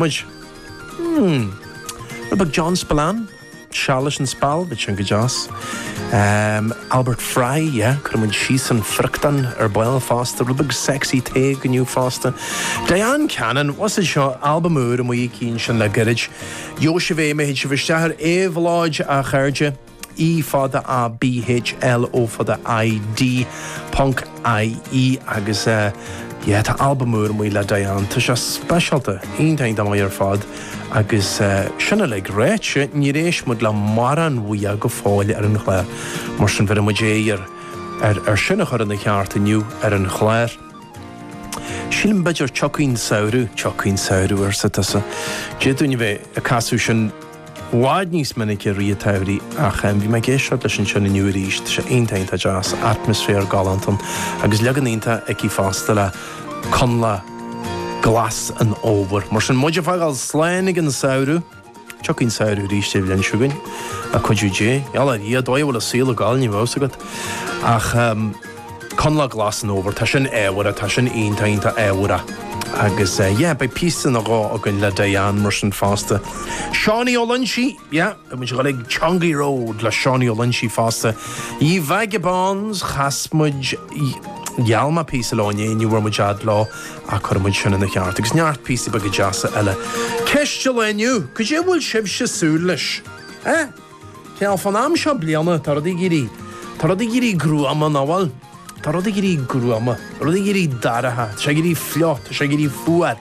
muid. Mmm. Rud beag John Spillane, seal leis an Spal, bhí sin go deas. Ehm, Albert Fry, yeah, cuirfidh muid síos an friochtán ar ball fosta, rud beag Sexy Tadhg inniu fosta. Diane Cannon, what's it seo, albam úr amuigh aici sin le gairid. Gheobhaidh sibh é, má théid sibh isteach ar Éabhlóid a chairde. E fada A B H L O fada I D ponc IE agus yeah tá albam úr amuigh le Diane. Tá sé speisialta, iontach iontach maith ar fad agus sin uilig ráite níor éist muid le mórán uaithi go fóill ar an chlár mar sin bhéarfaidh muid iarraidh ar sin a chur ina cheart inniu ar an chlár. Sílim b'fhéidir tiocfaidh an samhradh, tiocfaidh an samhradh arsa tusa. Dia dúinn a bheith ag casadh sin. bhfad níos minice i rith an tsamhraidh ach bhí mé ag éisteacht leis ansin inniu arís. Tá sé iontach, iontach deas, atmaisféar galánta ann agus leagan iontach aici fosta le Coinleach Glas an Fhómhair. Mar sin, muid ag fágáil slán ag an samhradh, tiocfaidh an samhradh arís an bhliain seo chugainn, le cuidiú Dé. Bhal, a Dhia, an dóigh a bhfuil an saol ag gabháil ní bheadh fhios agat ach. Coinleach Glas an Fhómhair, tá sin ábhartha, tá sin iontach, iontach ábhartha. Agus yeah, beidh píosa nó dhó againn le Diane mar sin fosta. Seánie Ó Loinsigh, yeah, beidh muid ag gabháil go Chongaí Road le Seánie Ó Loinsigh fosta. Ye Vagabonds, chas muid gheall mé píosa leo inné, ní bhfuair muid fhad leo ach cuirfidh muid sin ina cheart, agus neart píosaí beaga deasa eile. Ceist an lae inniu, cad é a bhfuil sibhse ag súil leis? Eh? Cineál, fán am seo bliana, tá rudaí ag éirí, tá rudaí ag éirí gruama, nach bhfuil? Tá rudaí ag éirí gruama, tá rudaí ag éirí dorcha, tá sé ag éirí fliuch, tá sé ag éirí fuar,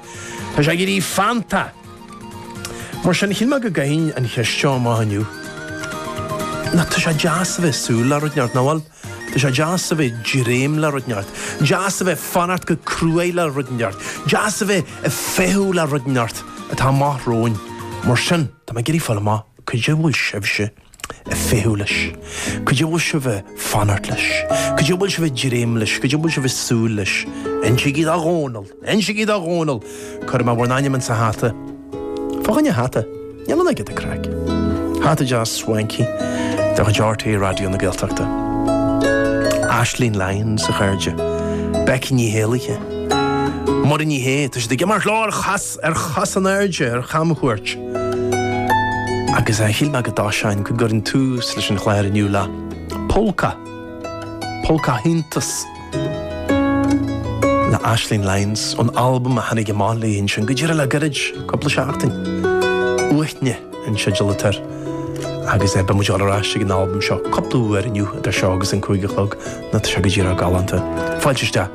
tá sé ag éirí feannta. Mar sin, chinn mé go gcaithfinn an cheist seo amach inniu. Nó tá sé deas a bheith ag súil le rud inteacht, nach bhfuil? Tá sé deas a bheith ag dréim le rud inteacht, deas a bheith ag fanacht go cruaidh le rud inteacht, deas a bheith ag feitheamh le rud inteacht atá amach romhainn. Mar sin, tá mé ag iarraidh fáil amach. Cad é a bhfuil sibhse a' feitheamh leis, cad é a bhfuil sibh a' fanacht leis, cad é a bhfuil sibh a' dréim leis, cad é a bhfuil sibh a' súil leis, insigí do Dhónall! Insigí do Dhónall! Cuirfidh mé bhur n-ainm insa hata. Fá choinne hata. Níl an oiread ag craic. Hata deas swanky de chuid RTÉ Raidió na Gaeltachta. Aisling Lyons, a chairde. Becky Ní hÉallaithe. Muireann Ní Shé, tá siad ag imeacht leo ar chos! ar chos in airde ar chamchuairt agus shíl mé go dtoiseoinn go gcuirfinn tús leis an chlár inniu le Pólca, Pólca Iontas le Aisling Lyons ón albam a tháinig amach léi ansin go díreach le gairid, cúpla seachtain. Uaithne an teideal atá air agus beidh muid ar ais ag an albam seo cúpla uair inniu idir seo agus an cúig a chlog, nó tá sé go díreach galánta. Fáilte isteach!